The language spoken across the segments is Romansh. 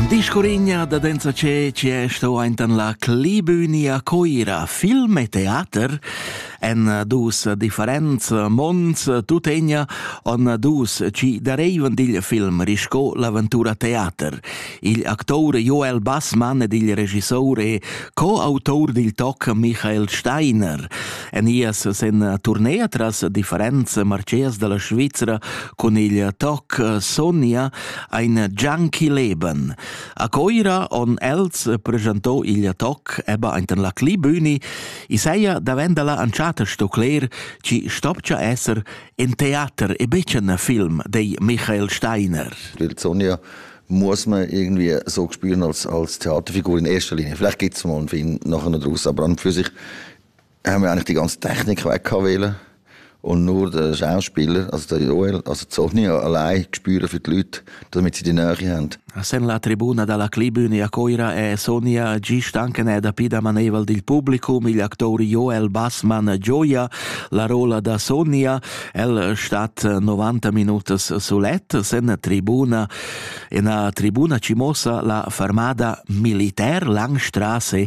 Discorigna da densa ce ci è sto aintan la Clibüni a Coira, film e teater en dus differents monds tutegna on dus ci dareivan digl film risco l'aventura teater. Il actor Joel Bassmann ed il regissore co autor dil toc Michael Steiner. en ia ses en turnea tras differenza marceas dalla Svizzera con il toc Sonia ein Junkie Leben. A Coira on els presentò il toc eba enten la Clibüni i seia davendala anchata sto cler ci stopcha esser en theater e becen film dei Michael Steiner. Il Sonia muss man irgendwie so spielen als, als Theaterfigur in erster Linie. Vielleicht geht es mal und für ihn nachher noch daraus, aber an für sich haben wir eigentlich die ganze Technik weggewählt und nur den Schauspieler, also der Joel, also Sonny allein gespürt für die Leute, damit sie die Nähe haben. Sen la tribuna dalla Clibüne a Coira è Sonia G. Stankened dapi da maneval dil publicum igl actori Joel Bassman Gioia la rola da Sonia el stat 90 minutas solet sen tribuna en a tribuna ci mossa la fermada militer Langstrasse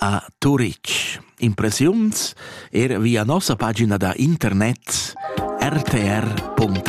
a Turitg. Impressiuns er via nossa pagina da internet rtr.ch.